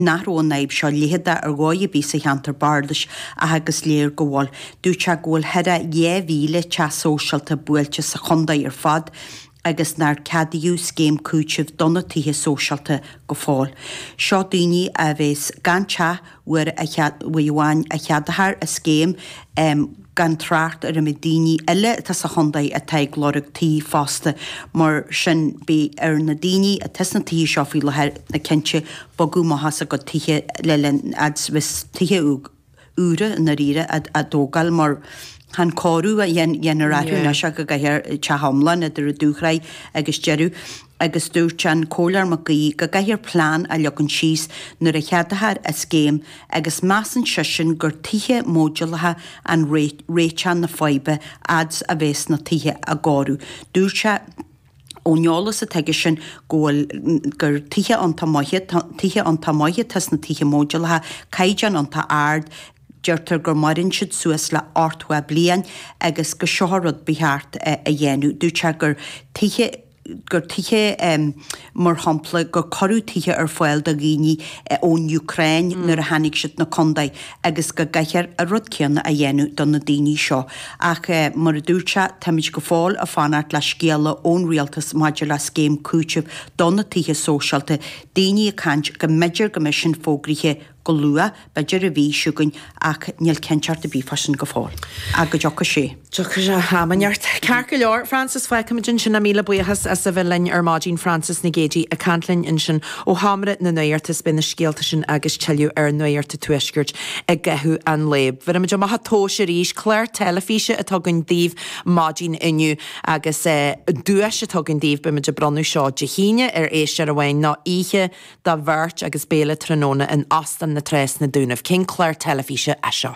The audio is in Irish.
nach raibh an fhadhb seo leitheadach ar dhóigh ar bith sa cheantar bardais ach is léir go bhfuil. Dúirt sé go bhfuil thar 2,000 teach sóisialta buailte sa chontae ar fad agus nár ceadaíodh scéim cúitimh do na tithe sóisialta go fóill. Seo daoine a bheas gan teach uair amháin a cheadófar an scéim. gan trácht ar an méid daoine eile atá sa chontae atá ag lorg tí fosta. Mar sin beidh ar na daoine atá sna tithe seo faoi láthair na cinnte bogadh amach as a gcuid tithe le linn fhad 's bheas tithe úra i ndáiríre á dtógáil mar chan cóiriú a dhéanfar orthu anois ach go gcaithfear teach iomlán idir an dúshraith agus deireadh. agus dúirt an Comhairleoir Mac Aoidh go gcaithfear plean a leagan síos nuair a cheadófar an scéim agus measann seisean gur tithe módúlacha an réiteach na faidhbe fhad 's a bheas na tithe á gcóiriú. Dúirt sé ón eolas atá aigesean go bhfuil gur tithe tithe iontach maithe atá sna tithe módúlacha, caighdeán iontach ard, deirtear gur maireann siad suas le 80 bliain agus gur seo rud ba cheart a dhéanamh. Dúirt sé gur tithe. gur tithe, mar shampla, gur cuireadh tithe ar fáil do dhaoine ón Úcráin nuair a tháinig siad na contae agus go gcaithfear an rud céanna a dhéanamh do na daoine seo. Ach mar a dúirt sé, táimid go fóill ag fanacht le scéala ón rialtas maidir le scéim cúitimh do na tithe sóisialta, daoine ag caint go mb'fhéidir go mbeidh sin fógraithe go Go luath, b'fhéidir, a bheidh a fhios againn ach níl cinnteacht ar bith fá sin go fóill. Ach go dtiocfaidh sé am inteacht. Ceart go leor, Frances, fágfaimid ansin é, míle buíochas as a bheith linn ar maidin Frances Nic Géadaigh ag caint linn ansin ó sheomra na nuachta is beidh na scéalta sin agus tuilleadh ar Nuacht an Tuaiscirt i gcaitheamh an lae. Bhéarfaimid amach an tomhas arís clár teilifíse atá againn daoibh maidin inniu agus an duais atá againn daoibh beimid ag bronnadh seo Dé hAoine ar éisteoir amháin ná oíche do bheirt agus béile tráthnóna in Óstán na Trá sna Dúnaibh. Cén clár teilifíse é seo?